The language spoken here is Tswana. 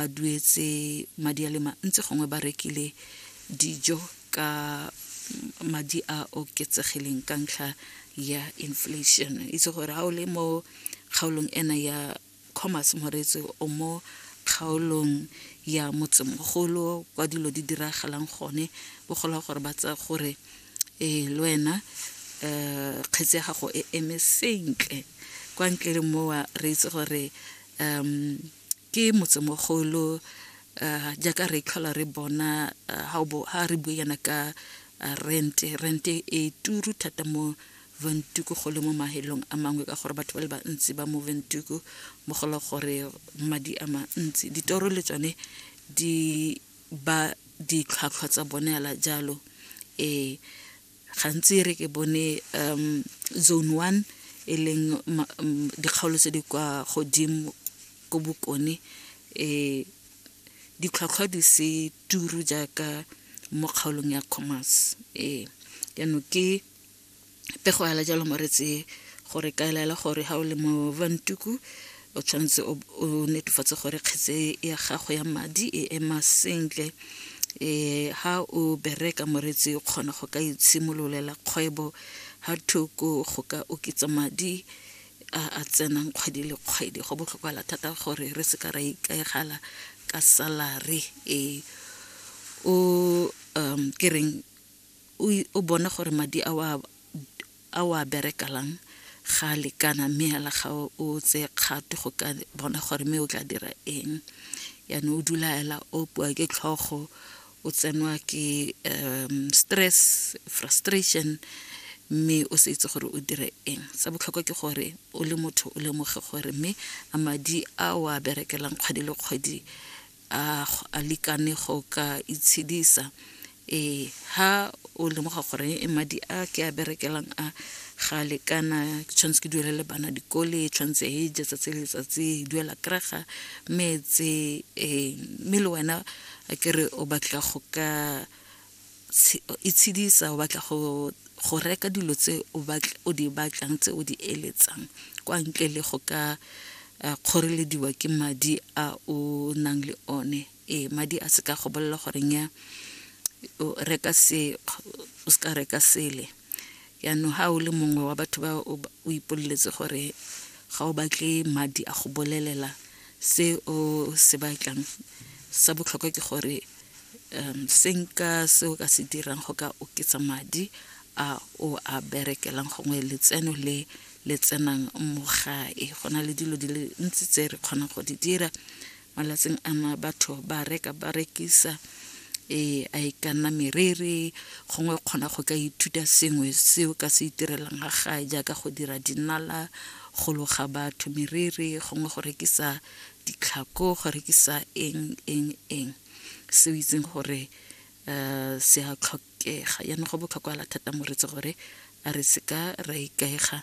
ba duetse madi a le mantsi gongwe ba rekile dijo ka madi a oketsegileng ka ntlha ya inflation itse gore ga o le mo kgaolong ena ya commerce moreetsi o mo kgaolong ya motsemogolo kwa dilo di diragalang gone o gola gore ba tsaya gore ee le wena um kgetse ya gago e eme sentle kwa ntle le mowa re itse gore um Ke motsemogolo jaaka re tlhola re bona ha re bue yana ka rent. Rent e turu thata mo Windhoek go le mo mafelong a mangwe ka gore batho ba le bantsi ba mo Windhoek mo go le gore madi a mantsi. Ditoro le tsone di ba ditlhwatlhwa tsa bone fela jalo. gantsi re ke bone um zone one e leng dikgaolo tse di kwa godimo ko bokone um ditlhwatlhwa di se turu jaaka mo kgaolong ya commerce ee jaanong ke pego ya la jalo mo re tseye gore ka elaela gore ga o le mo vantuku o tshwanetse o netefatse gore kgetse ya gago ya madi e ema sentle um ha o bereka moretsi o kgona go ka itshimololela kgwebo ha thoko go ka oketsa madi a a tsenang kgwedi le kgwedi go botlhokala thata gore re se ka ra ikaegala ka salary e o um ke reng o bona gore madi a wa A o a bereka lang? Ga a lekana, mme hela ga o tseye kgato go ka bona gore mme o tla dira eng. Yaanong o dula hela o opiwa ke tlhogo, o tsenwa ke stress, frustration, mme o se itse gore o dire eng. Sa botlhokwa ke gore o le motho o lemoge gore mme a madi a o a berekelang kgwedi le kgwedi a a likane go ka itshedisa e ha o lemoga gore e madi a ke a berekelang a ga lekana ke tshwanetse ke duelele bana dikole tshwanetse e je tsatsi le letsatsi duela kerega metse e mme le wena a kere o batla go ka itshedisa o batla go go reka dilo tse o batla o di batlang tse o di eletsang kwa ntle le go ka eh, kgorelediwa ke madi a o nang le one ee madi a se ka go bolela gore nya o reka se o se ka reka sele Jaanong ga o le mongwe wa batho ba o ipoleletse gore ga o batle madi a go bolelela se o se batlang sa botlhokwa ke gore um se nka se o ka se dirang go ka oketsa madi a o a berekelang gongwe letseno le le tsenang mo gae go na le dilo di le ntsi tse re kgonang go di dira malatsing ana batho ba reka ba rekisa e a e ka nna merere gongwe kgona go ka ithuta sengwe seo ka se itirelang ga gae jaaka go dira dinala go loga batho merere gongwe go rekisa ditlhako go rekisa eng eng eng seo itseng gore um se a tlhokega yaanong go botlhokwa la thata moretsi gore a re se ka ra ikaega